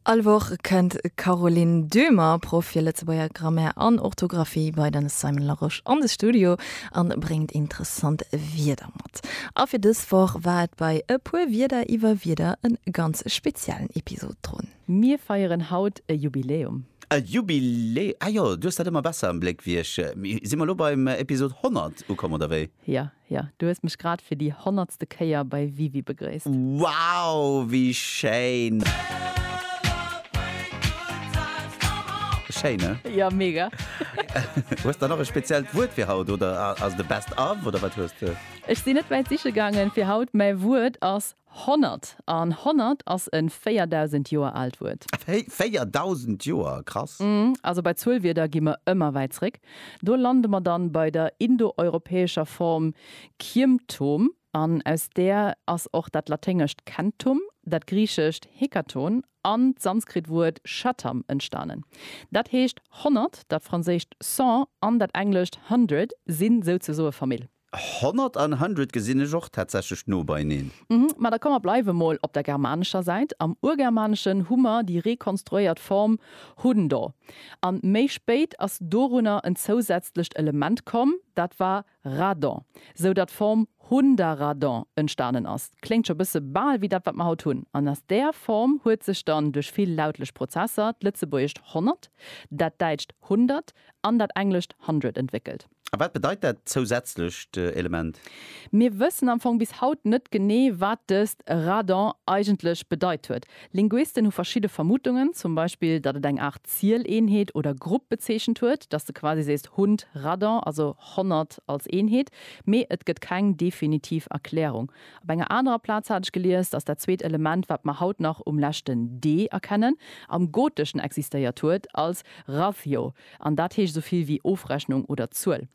All Woch kënnt d'Caroline Döhmer, Proff fir Lëtzebuerger Grammaire an Orthografie bei den Simon Larosche an de Studio a bréngt interessant Wierder mat. A fir dës Woch war et bei E puer Wierder iwwer Wierder e ganz speziellen Episod drun. Mir feieren haut e Jubiläum. E Jubilä Ah jo, du hues dat ëmmer besser am Bléck wéi ech. Hu si mer elo beim Episod 100 ukomm, oder wéi? Jo, Jo, du hues mech grad fir déi honnertste Kéier bei WiWi begréisst. Wow, wéi schéin! Schéin, ne? Jo, mega! Hues der nach e speziellt Wuert fir haut oder ass et e Best of oder wat hues de? Ech sinn net wäit siche gaangen fir haut, mäi Wuert ass Honnert. An honnert ass e 4.000 Joer aalt Wuert. Wéi? 4.000 Joer? Krass! Mmh, also bei Zuelwierder gi mer ëmmer wäit zréck. Do lande mer dann bei der indoeuropäescher Form Kiemtom, an aus där ass och dat laténgescht centum, dat griichescht hekaton an d'sanskrit Wuert shatam entstanen. Dat heescht, honnert, dat franséischt cent an dat englescht hundred sinn souzesoe Famill. 100 an hundred gesinn ech och tatsächlech no beineen. Mhm, ma da komm mer bleiwe mol op der germanescher Säit. Am Urgermaneschen hu mer déi rekonstruéiert Form hundo. An méi spéit ass dorunner en zousätzlecht Element komm, dat war radon, sou datt d'Form hundaradon entstanen ass. Kléngt scho bësse bal wéi dat, wat mer haut hunn. An aus där Form huet sech dann duerch vill lautlech Prozesser d'lëtzebuergescht honnert, dat däitscht hundert an dat englescht hundred entwéckelt. A wat bedeit dat zousätzlecht Element? Mir wëssen am Fong bis haut net genee, wat dëst Radon eigentlech bedeit huet. Linguisten hu verschidde Vermutungen, zum Beispill, datt et eng Aart Zieleenheet oder Grupp bezeechent huet, datt s de quasi sees Hund Radon, also honnert als Eenheet, mee et gëtt keng definitiv Erklärung. Op enger anerer Plaz hat ech gelies, datt dat zweet Element, wat mer haut nach um leschten d erkennen, am Goteschen existéiert huet als rathio. An dat heescht esou vill wéi Ofrechnung oder Zuel.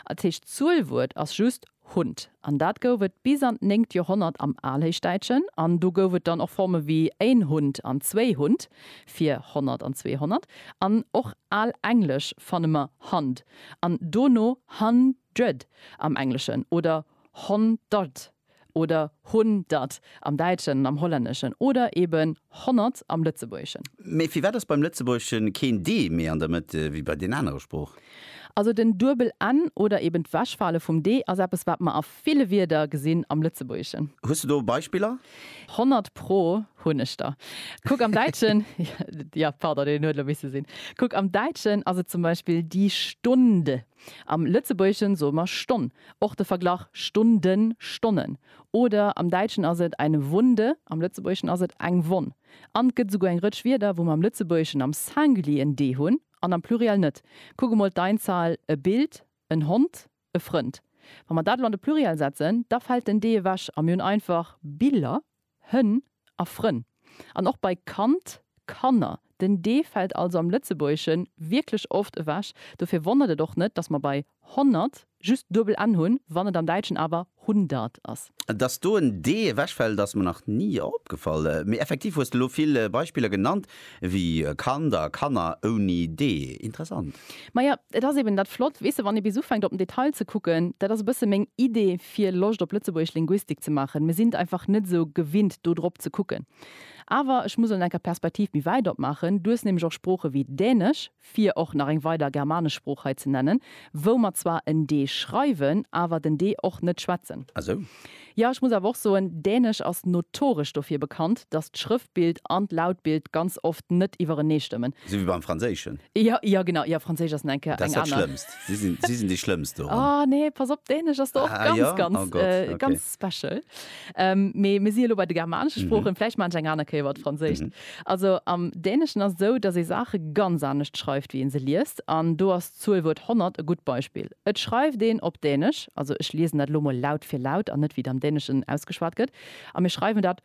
Als héischt Zuelwuert ass just Hund. An dat gouf et bis an d'néngt Joerhonnert am Alhéichdäitschen. An do gouf et dann och Forme wéi én Hund an zwéi Hund fir Honnert an Zweehonnert. An och al Englesch fanne mer Hund an dono Hundred am Engleschen oder Honderd oder hun dat am Däitschen an am Hollänneschen oder eben honnert am Lëtzebuergeschen. Mee firwat ass beim Lëtzebuergesche keen d méi an der Mëtt wéi bei den anere Sprooch? Also den duebel n oder eben d'Wechfale vum d ass eppes, wat mer a ville Wierder gesinn am Lëtzebuergeschen. Hues de do Beispiller? Honnert pro hunn ech der. Kuck am Däitschen, jo, pardon, deen huet elo misse sinn, kuck am Däitschen ass et zum Beispill die Stunde. Am Lëtzebuergeschen soe mer Stonn. Och de Verglach Stunden, Stonnen. Oder am Däitschen ass et eine Wunde, am Lëtzebuergeschen ass et eng Wonn. An 't gëtt esouguer eng Rëtsch Wierder, wou mer am Lëtzebuergeschen am Singulier en d hunn an am Pluriel net. Kuck emol d'Einzahl, e Bild, en Hond, e Frënd. Wa mer dat elo an de Pluriel setzen, da fält den d ewech a mir hunn einfach Biller. Hënn a Frënn an och bei Kand, Kanner. Den d fält also am Lëtzebuergesche wierklech oft ewech. Dofir wonnert et och net, dass mer bei honnert just duebel n hunn, wann et am Däitschen awer hundert ass. Dass do en d ewechfält, ass mer nach ni opgefall. Mee effektiv hues de elo vill Beispiller genannt, Wéi e Kand a Kanner ouni D. Interessant. Maja, et ass eben dat Flott, weess de, wann ee bis ufänkt op den Detail ze kucken. Dat ass e bësse meng Idee fir Loscht op Lëtzebuergesch Linguistik ze maachen. Mir sinn einfach net esou gewinnt do drop ze kucken. Awer ech muss elo enker d'Perspektiv méi wäit opmaachen. Du hues nämlech och Sprooche wéi Dänesch. fir och nach eng weider germanesch Sprooch hei ze nennen, wou mer zwar en d schreiwen, awer den d och net schwätzen. Ah sou. Jo, ech muss awer och soen, Dänesch ass notoresch dofir bekannt, dass d'Schrëftbild an d'Lautbild ganz oft net iwwerenee stëmmen. Sou wéi beim Franséischen. Jo, jo, genau. Jo, Franséisch ass enke eng aner. Dat ass dat Schlëmmst. Si sinn déi Schlëmmst doran. Ah, nee, pass op, Dänesch ass do och ganz, ganz, ganz. Ah jo? Oh Gott, ok. Special. Ähm, mee mir si jo lo bei de germanesche mhm. Sproochen, vläicht man eng aner Kéier wat Franséischt. Mhm. Also am Däneschen ass esou, datt ee Saache ganz anescht schreift, wéi een se liest. An do ass d'Zuelwuert 100 e gutt Beispill. Et schreift een op Dänesch, also ech liesen dat lo mol laut fir laut an net wéi et am Däneschen ausgeschwat gëtt, a mir schreiwen dat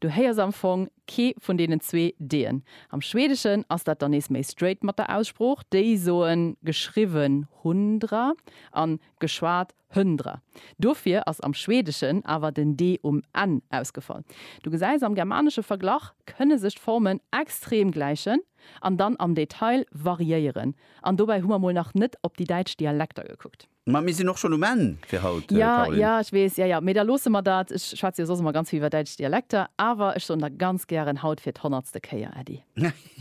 Du héiers am Fong kee vun deenen zwee D'en. Am Schwedeschen ass dat dann nees méi straight mat der Aussprooch, déi soen geschriwwen hundra an geschwat höndra. Dofir ass am Schwedeschen awer den D um Enn ausgefall. Du gesäis, am germanesche Verglach kënne sech d'Formen extrem gläichen an dann am Detail variéieren. An dobäi hu mer mol nach net op déi däitsch Dialekter gekuckt. Ma mir sinn och schonn um Enn fir haut, Caroline. Ja, ja, ech weess. Ja, ja, mee da loosse mer dat. Ech schwätze jo soss ëmmer ganz vill iwwer däitsch Dialekter, awer ech soen der ganz gären haut fir d'honnertste Kéier Äddi.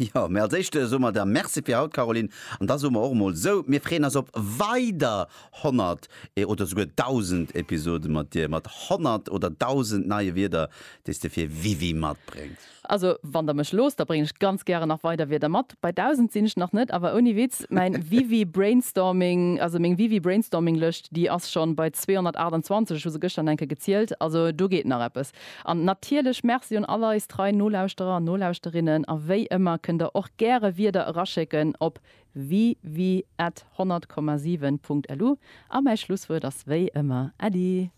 Jo, mee als éischt soe mer der Merci fir haut, Caroline. An da soe mer och emol esou, mir freeën eis op weider honnert oder souguer dausend Episode mat dir, mat honnert oder dausend neie Wierder, déi s de fir Wiwi matbréngs. Also wann der mech loosst, da bréngen ech ganz gären nach weider Wierder mat. Bei 1000 sinn ech nach net, awer ouni Witz, mäin Wiwi Brainstorming, also meng Wiwi Brainstorming Lëscht, déi ass schonn bei 228, ech hu se gëschter nach eng Kéier gezielt, also do geet nach eppes. An natierlech Merci un all eis trei Nolauschterer an Nolauschterinnen, a wéi ëmmer kënnt der och gäre Wierder eraschécken op wiwi at 100,7 punkt lu. A mäi Schlusswuert ass wéi ëmmer Äddi!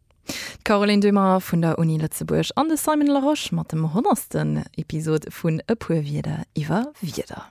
D'Caroline Dummer vun der Uni Lëtzebuerg an de Simon Larosche mat dem honnertsten Episod vun E puer Wierder iwwer Wierder.